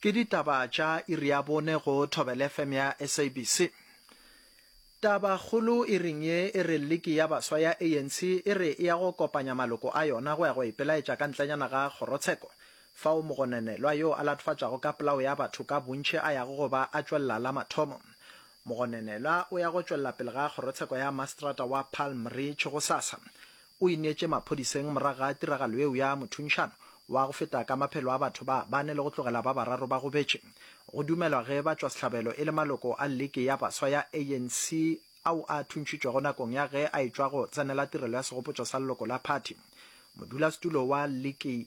Ke ditaba tša iri ya bone go Thobela FM ya SABC. Taba kgolo iring ye e re liki ya baswa ya ANC e re e ya go kopanya maloko a yona go ya go ipelaetša ka ntlenyana ga kgorotsheko fao mogonenelwa yo a latofatšago ka polao ya batho ka bontši a yago go ba a tšwelela la mathomo. Mogonenelwa o ya go tšwelela pele ga kgorotsheko ya mastrata wa Palm Ridge gosasa O ineetše maphodiseng morago ga tiragalo yeo ya mothunšano wa go feta ka maphelo a batho ba bane le go tlogela ba bararo ba gobetše. Go dumelwa ge batšwasehlabelo e le maloko a Liki ya Baswa ya ANC ao a thuntšhitšwego nakong ya ge a etšwa go tsenela tirelo ya segopotšo sa leloko la phathi. Modulasetulo wa Liki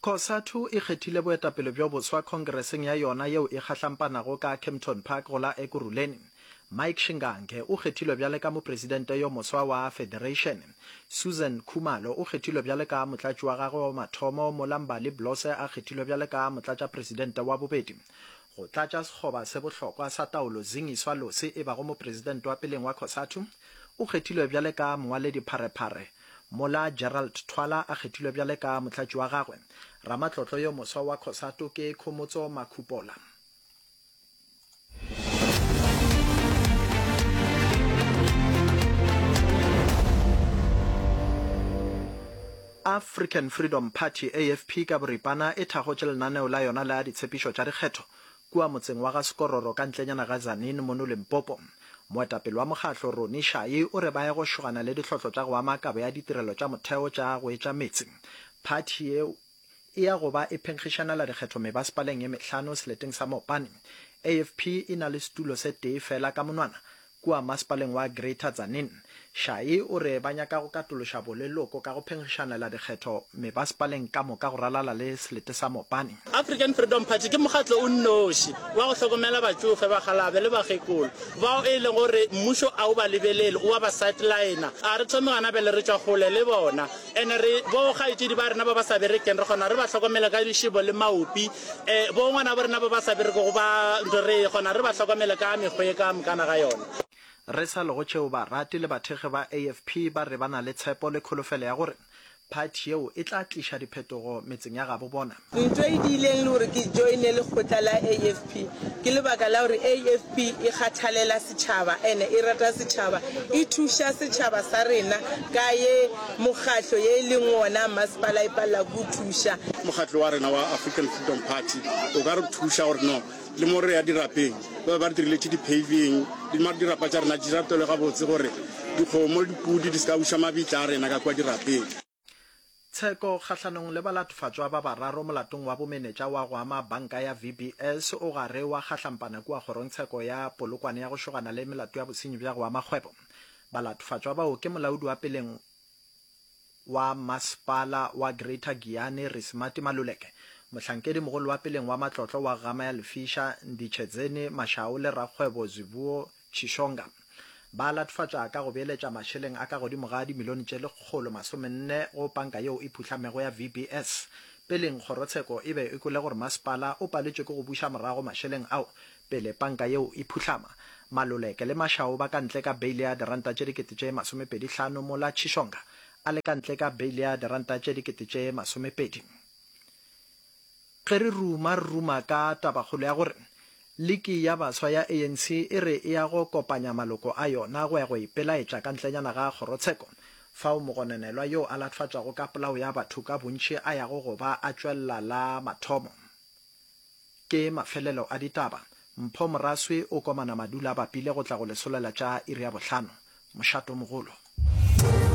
Cosatu e kgethile boetapele bjo boswa khongereseng ya yona yeo e kgahlampanago ka Kempton Park go la Ekurhuleni. Mike Shingange o kgethilwe bjale ka mopresidente yo moswa wa federation. Susan Khumalo o kgethilwe bjale ka motlatši wa gagwe wa mathomo mola Mbali Blose a kgethilwe bjale ka motlatšapresidente wa bobedi go tlatša sekgoba se bohlokwa sa taolo. Zingiswa Losi e bago mopresidente wa peleng wa Cosatu o kgethilwe bjale ka mongwaledipharephare Mola Gerald Thwala a kgethilwe bjale ka motlatši wa gagwe, ramatlotlo yo moswa wa Cosatu ke Khomotso Makhupola. African Freedom Party, AFP, ka boripana e thakgotše lenaneo la yona la ditshepišo tša dikgetho Kua motseng wa ga Sekororo ka ntlenyana ga Tzaneen mono Limpopo, moetapele wa mokgatlo Ronnie Shayi o re ba ye go šogana le dihlotlo tša go ama kabo ya ditirelo tša motheo tša go etša meetse. Phathi yeo e ya go ba e phenkgišanela dikgetho mebasepaleng ye mehlano seleteng sa Mopane. AFP e na le setulo se tee feela ka monwana Kua masepaleng wa Greater Tzaneen, Shayi o re ba nyaka go katološa boleloko ka go phenkgišanela dikgetho mebasepaleng ka moka go ralala le selete sa Mopani. African Freedom Party ke mokgatlo o nnoši wa go hlokomela batšofe, bakgalabe le bakgekolo bao e lego gore mmušo a o ba lebelele, o a ba sideline-a. A re thome gona pele re tšwa kgole le bona. Ene re, bo kgaetšedi ba rena ba ba sa berekeng, re kgona re ba hlokomele ka lišebo le maopi. E, bo ngwana ba rena ba ba sa berekego ba, nto re kgona re ba hlokomele ka mekgwa e ka mokana ga yona. Re sa lego tšeo, barati le bathekgi ba AFP ba re ba na le tshepo le kholofelo ya gore phathi yeo e tla tliša diphetogo metseng ya gabo bona. Ntwa e diileng le gore ke joine lekgotla la AFP ke lebaka la gore AFP e kgathalela setšhaba ene e rata setšhaba, e thuša setšhaba sa rena ka ye mokgatlo ye e leng wona masepala e palela ke o thuša. Mokgatlo wa rena wa African Freedom Party o ka re thuša gore no le mo re ya dirapeng ba be ba re diriletše di-paving, mare dirapa tša rena di rapelwe gabotse gore dikgomo le dipudi di se ka buša mabitla a rena ka kua dirapeng. Tsheko kgahlanong le balatofatšwa ba bararo molatong wa bomenetša wa go ama banka ya VBS o gare wa kgahlampana kua kgorongtsheko ya Polokwane ya go šogana le melato ya bosenyi bja go ama kgwebo. Balatofatšwa bao ke molaodi wa peleng wa masepala wa Greater Giyani Risimati Maluleke, mohlankedi mogolo wa peleng wa matlotlo wa Gama ya Lefisha Nditshedzeni Mashau le rakgwebo Zwivuo Chishonga. Ba latofatša ka go beeletša mašeleng a ka godimo ga dimilione tše lekgolo masomenne go panka yeo e phuhlamego ya VBS. Peleng kgorotsheko e be e kwele gore masepala o paletšwe ke go buša morago mašeleng ao pele panka yeo e phuhlama. Maluleke le Mashau ba ka ntle ka beile ya diranta tše dikete tše masomepedi hlano mola Chishonga a le ka ntle ka beile ya diranta tše dikete tše masomepedi. Ge re ruma, re ruma ka tabakgolo ya gore Liki ya Baswa ya ANC e re e ya go kopanya maloko a yona go ya go ipelaetša ka ntlenyana ga kgorotsheko, fao mogononelwa yo a latfatšwago ka polao ya batho ka bontši a yago go ba a tšwelela la mathomo. Ke mafelelo a ditaba. Mpho Moraswi o komana Madula a bapile go tla go lesolela tša iri ya bohlano. Mošato mogolo.